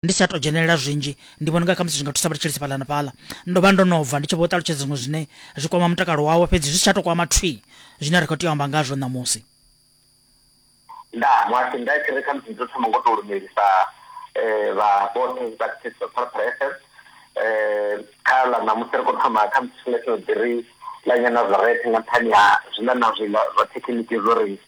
ndi sa to dzhenelela zwinzhi ndi vhona nga kha musi zwi nga thusa vha tshelisi fhaḽa na fhaḽa ndo vha ndo no bva ndi tshi vho ṱalutshedza zwiṅwe zwine zwi kwama mutakalo wawe fhedzi zwi si tsha to kwama thwi zwine ri khou tea u amba ngazwo ṋamusi nda mwasi nda tshi ri kha musi dzo thoma ngo to lumelisa um vha vhoṱhe vha thetshelesa phalaphala fm um eh, kha ḽa ṋamusi ri khou thoma kha musi tshifhinga tsho ḓiri ḽa nyana zwa rethe nga nṱhani ha zwiḽa na zwiḽa zwa thekhiniki zwo ri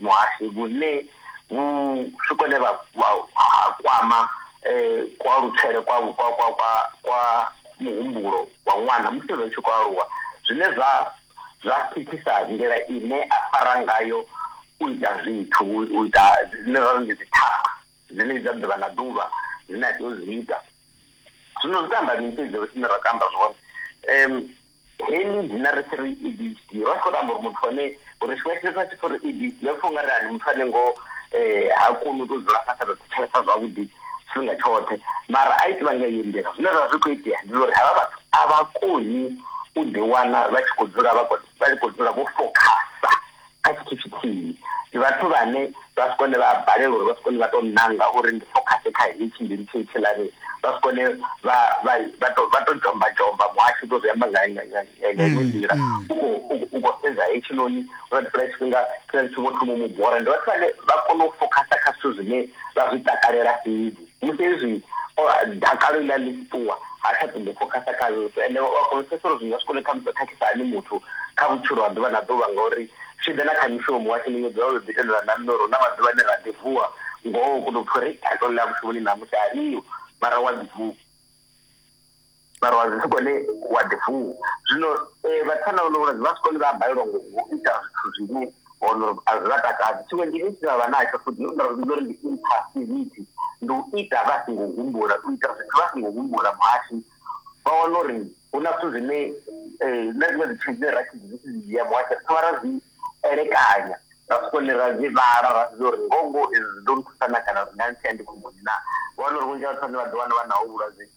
muhasho vhune vhu swikone vha kwama kualutshele kwa kwa kwa kwa kwa muhumbulo wa ṅwana musi ri tshi khou aluwa zwine zwa zwa thithisa nḓila ine a fara ngayo u ita zwithu u ita zwine ra ndi dzi thaga dzine dza ḓuvha na ḓuvha zwine a tea u zwi ita zwino zwi tou amba mini fhedzi ri tshine ra tou amba zwone . heḽi dzina ri tshi ri EDHD ro tshi khou to amba uri muthu ane uri tshiṅwe tshithu a tshi khou ri EDHD ro pfa ungari ani muthu ane ngo eh, ha koni u to dzula fhasi a to thetshelesa zwavhuḓi tshifhinga tshoṱhe mara a itiva nga iyo nḓila zwine zwa zwi khou itea ndi uri havha vhathu a vha koni u ḓiwana vha tshi khou dzula vha khou dzula vho fokhasa kha tshithu tshithihi ndi vhathu vhane vha si kone vha a balelwa uri vha si kone vha tou nanga uri ndi fokhase kha hetshi ndi litshe itshi lani vha si kone vha vha to vha to dzhomba dzhomba muhasho to zwi amba nga nga nga nga iṅwe nḓila u khou u khou sedza hetshinoni uri ndi fhela tshifhinga tshine ndi tshi vho thoma mu bora ndi vhathu vhane vha kone u fokhasa kha zwithu zwine vha zwi takalela fhedzi musi hezwi dakalo iḽa ḽi tshi ṱuwa ha tsha ṱoḓo fokhasa kha yesu ende u a kona u pfesesa uri zwi nga swi kone khamusi khakhisa ani muthu kha vhutshilo ha ḓuvha na ḓuvha ngauri zwi ḓa na kha mishumo washu ni nyedza uri ḓi tendelwa na nṋe uri hu na maḓuvha ane ra ḓi vuwa ngoho u kona u pfha uri dakalo ḽa mushumoni namusi aliho mara wa ḓi vuwa mara wa zwi sikone wa ḓivuwa zwino eh, vhathana ono vhona vha sikone vha balelwa ngo ita zwithu zwine ono a zwi vha takadzi tshiṅwe ndi isi vha natsho futhi nda zwi uri ndi impassivity ndi u ita vha singo humbula u ita zwithu vha singo humbula muhashi vha wana uri hu na zwithu zwine eh, na zwiṅwe zwithu zwine ra tshi zwi tshi dzhia muhashi ri thoma ra zwi elekanya ra sikone ra zwi vhala ra zwi uri ngongo ndo nthusa na kana zwi nga ntshea ndi khomboni na vha wana uri vhunzhi ha vhathu vhane vha ḓi wana vha naho vhulwadze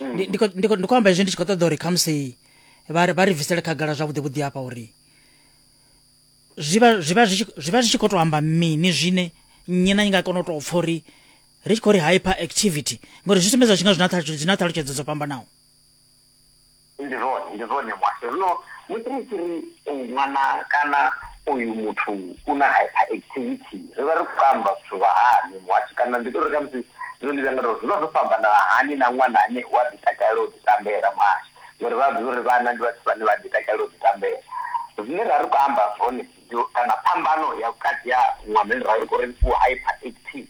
ndi khou amba izwi ndi tshi khou ṱoḓa uri khamusi vha ri bvisele khagala zwavhuḓi vhuḓi hafha uri zwi vha zwi tshi khou tou amba mini zwine nnyi na nyi nga kona u tou pfa uri ri tshi khou ri hyper activity ngori zwi sumbedza zwi nga zwi na ṱhalutshedzo dzo fhambanaho Ndi zwone, ndi zwone muhasho. Zwino musi ri tshi ri uyu ṅwana kana uyu muthu u na hyperactivity, ri vha ri khou amba zwithu zwa hani muhasho? Kana ndi ḓo ri khamusi zwine ndi vhuya nda tou, zwi vha zwo fhambana hani na ṅwana ane u a ḓi takalela u ḓi tambela muhasho? Ngori vha a ḓivha uri vhana ndi vhathu vhane vha a ḓi takalela u ḓi tambela. Zwine ra ri khou amba zwone kana phambano ya vhukati ha ṅwana ane ra vha ri khou ri u hyperactive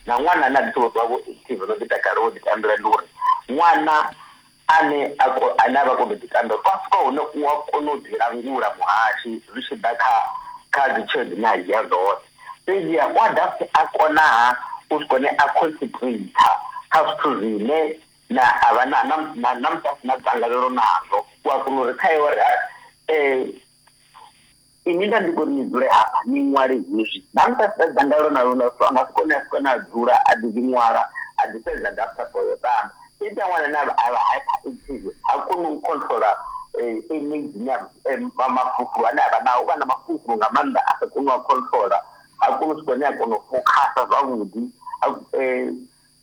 na ṅwana ane a ḓi sokou ṱuwa a vha o active, o no ḓi takalela u ḓi tambela ndi uri ṅwana ane a ko, ane a vha kono u ḓitambela fhasi kwa hone u a kona u ḓilangula muhashi zwi tshi ḓa kha kha dzi tshelede dzine a dzhia dzoṱhe fhedziha u a dovha futhi a konaha u swika hune a concentrator kha zwithu zwine na a vha na na na na musi a si na dzangalelo nazwo u a kona uri kha iwe ri um Ini nda ndi vhori ni dzule hafha ni ṅwale hezwi. Nda mu fhedzisa dzangalelo na lune so a nga si kone a si kone a dzula a ḓi ḓi ṅwala a ḓi fhedza dafta for yo ṱamba. Zwi ita ṅwana ane a vha hyperactive ha koni u controla energy na mafulufulu ane a vha nao. U vha na mafulufulu nga maanḓa a sa koni u a controla ha koni u swika hune a kona u fokhasa zwavhuḓi.